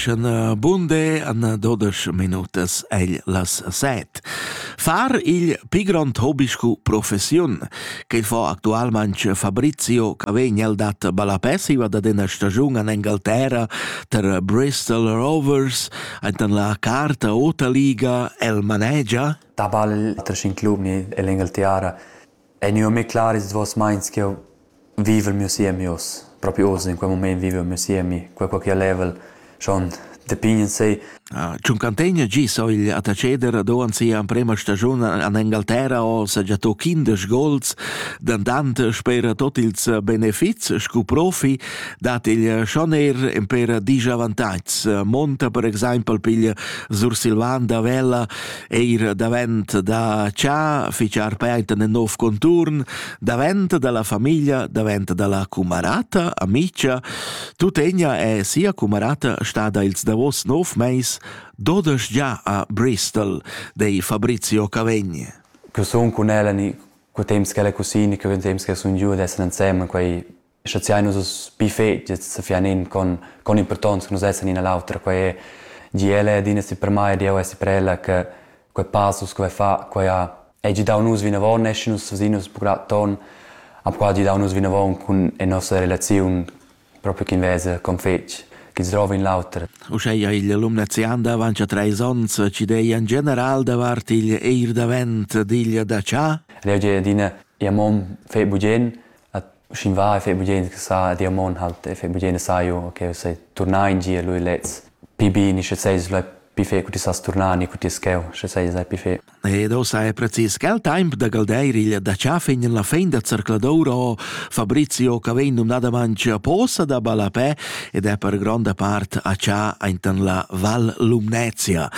Sch'na bunde anna dodesch minutas egl las set. Far il pi grond hobby scu professiun, che fo actualmente Fabrizio Cavegna dat balapessiva da dena stagiun an Engalterra ter Bristol Rovers, aintan la carta Ota Liga el manegia? Da ball, tre cinc lumi e l'Engalterra Ei gnü mê clar ils duos meins ch'eu viv il mio siemi uss. Propi uss, in quel mumaint vivu il mio siemi, quel co ch'el level schon da pign in se. Ch'ün cantegna gi s'ho il attacheder do an sia amprema stagiun an Engalterra ho sagià to quindesch gols, dandant sper tot ils benefits scu profi dat il Schoner in per disch avantatgs. Monta per exaimpel piglia Sursilvan da Vella eir davent da cha fichar painta nel nov conturn, davent dalla famiglia, davent dalla cumarata, amicia, tuttegna è sia cumarata stada ils davos nov meis dodesch già a Bristol dei Fabrizio Cavegni. Che sun cun ella ni co temps ch'ella è cusina, che vegn temps che sun giù ed essere insemme, quei schaziai nus uss bi fetgiets sa fian in con con importanza nus essan ina l'autra quei è di ella ed ina si per mai di eu essi per ella che quei passus quei fa quei ha è gi dau nus vinavon essi nus fasin nus burat ton am qua gi dau nus vinavon cun e nossa relaziun proprio chin vesa con fetg chi drova in l'auter. Uscheia igl alumnazian d'avantia treis onns ci deia in general davart igl eir davent digl da cha? Ed io di adina, ia mom fe bugen, Sch'in va e fai bugien sa, di amon halt e fai bugien saio, okay, sai turnà in gia lui lez. Pi bini, sche sei slai pi fe cu ti sas turnà ni cu ti scheu, sche sei slai pi fe. Ed o sai precis quel temp da galdeir il da chafin la fin da zercladoura Fabrizio che vegn numnadament a posa da Balapè ed è per gronda part a cha aintan la Val Lumnezia.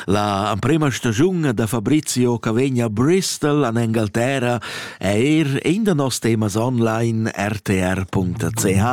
La prima stagiun da Fabrizio che vegn a Bristol an Engalterra Eir in da noss temas online rtr.ch.